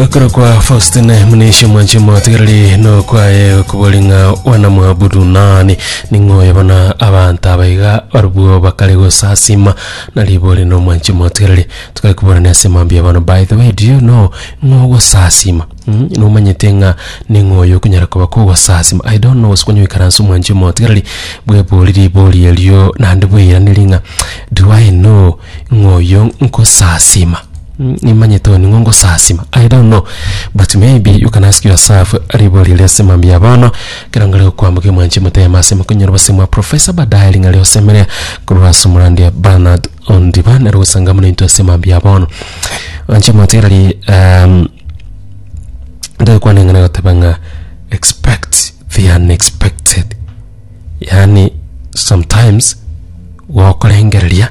Okorokwa Faustine Munisha omwanchi omotigareri nokwaye okobori ng'a wanamwabudu nani ning'oyo bono abanto abaiga barobwo bakare gosasima na ribori na omwanchi omotigareri tokare koborana ase mambia bono by the way do you know ng'o ogosasima mm, nomanyete ng'a ning'oyo okonyara koba kogosasima I don't know gose konyoikaransa omwanchi omotigareri bwebori ribori erio naende bweiraneri ng'a do I know Ng'a oyo nkosasima. Mm, Nimanyete oyo ning'o nkosasima. I don't know, but maybe you can ask yourself ribo riria ase mambia bono, ekero ngare gokwamboka emwanchi emotema ase mokonyora obosemi bwa Professor baadaye ring'a riosemere korwa ase omorandia Bernard Ondiba nero gosangamwa naintwe ase mambia bono. Anche motereri, um, ndagokwana eng'ana egoteba ng'a expect the unexpected. yaani sometimes gokorengereria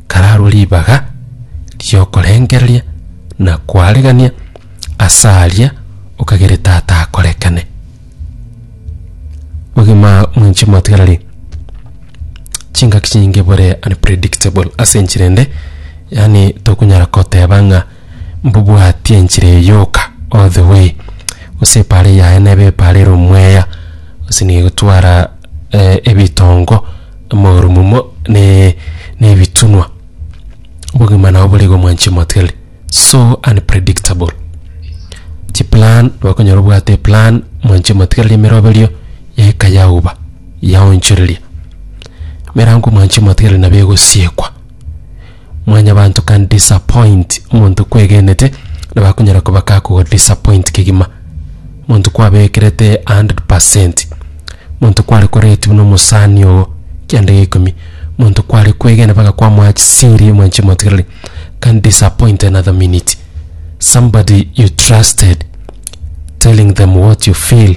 kararwe ribaga riokorengereria na kwaregania ase aria okagere tata akorekane ogima mwenche mwatigarari chingaki chinyinge bore unpredictable ase enchera ende yaani tokonyara koteba ng'a mbobwatie enchera eyoka all the way gose epaara yaye nebe epaara ere omweya gose nigo egotwara ebitongo, amagoro momo ne ne ebitunwa. Obogima nabo bore igo mwanchi moteli so unpredictable. Chi plan bakonyora obwate plan mwanchi motigereria emeroberio eka yauba yaonchoreria. Emerango mwanchi motigereria nabo egosiekwa. Mwanyabanto can disappoint omonto kwegenete nabo akonyara koba kakogo disappoint kegima. Omonto kwabekerete 100%, omonto kware korate buna omosani oo kianda gia ikomi, omonto kware kwegena mpaka kwamoa chisiri omwana chimotigereri can disappoint another minute. Somebody you trusted telling them what you feel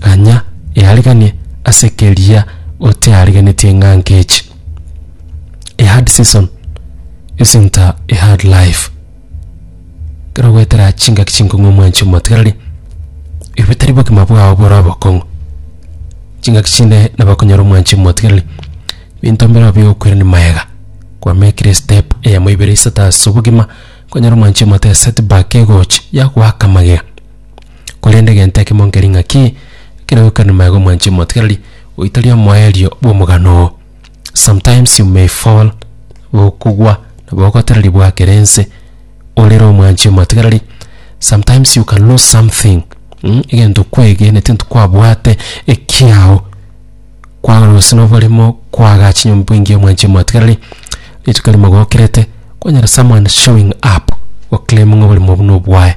Ganya eariganie ase keria oteariganetie ng'a nkechi. A hard season isn't a a hard life. Kero gwetera chingaki chinkong'u omwanchi omotigareri, ebi tari bogima bwao bore obokong'u. Chingaki chinde nabo okonyora omwanchi omotigareri, binto mbireo bigokwirani mayega. Kwa mekire step eyemo ibere isato ase obogima, okonyora omwanchi omote set back egochi yagoaka magega. Korende egento ekemo nkeri ng'aki, ekero ogokana maega omwanchie omotigereri, goita ria omoerio bw'omogano oo. Sometimes you may fall, okogwa, nabo ogotereri bwakera ense, orere omwanchie omotigereri, sometimes you can lose something mh, egento kwegeneti ntwe kwabwate ekiao, kwagora gose na oboremo, kwaga chinyomba bweingi omwanchie omotigereri, rituko rimo gokerete, kwanyora someone showing up, goclaiming oboremo obwo nobwaye.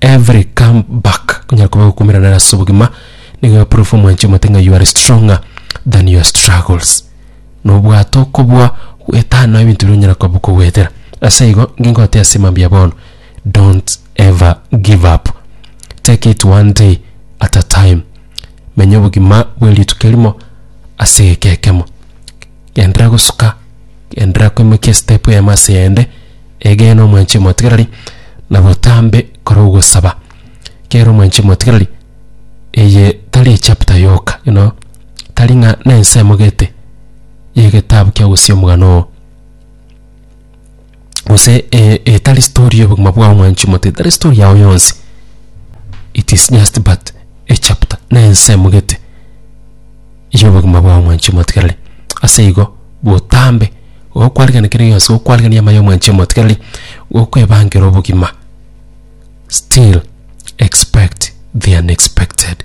Every come back onyare koba gokumerana nere ase obogima nigo e proof omwanche omote ng'a you are stronger than your struggles na obwato okobua gwetana ebinto bire onyara koba okogwetera ase igo ngingote ase mambia ya bono don't ever give up take it one day at a time menya obogima bwe rituko erimo ase egeka ekemo Genderera gosuka, genderera koimokia estepu eyemo ase eyende, egena omwanchi omotigereri, na botambe kora ogosaba. Kera omwanchi omotigereri, eye tari echapter yoka, you know, tari ng'a na ense emogete ya egetabu kia ogosia omogano oo. gose e- etari story y'obogima bwao mwanchi mote etari story yao yonsi it is just but a chapter na ense emogete y'obogima bwao mwanchi omotigereri ase igo botambe igo kwarigani kere gionsi igo kwarigani amayo mwanchi omotigereri gokwebangera obogima still expect the unexpected.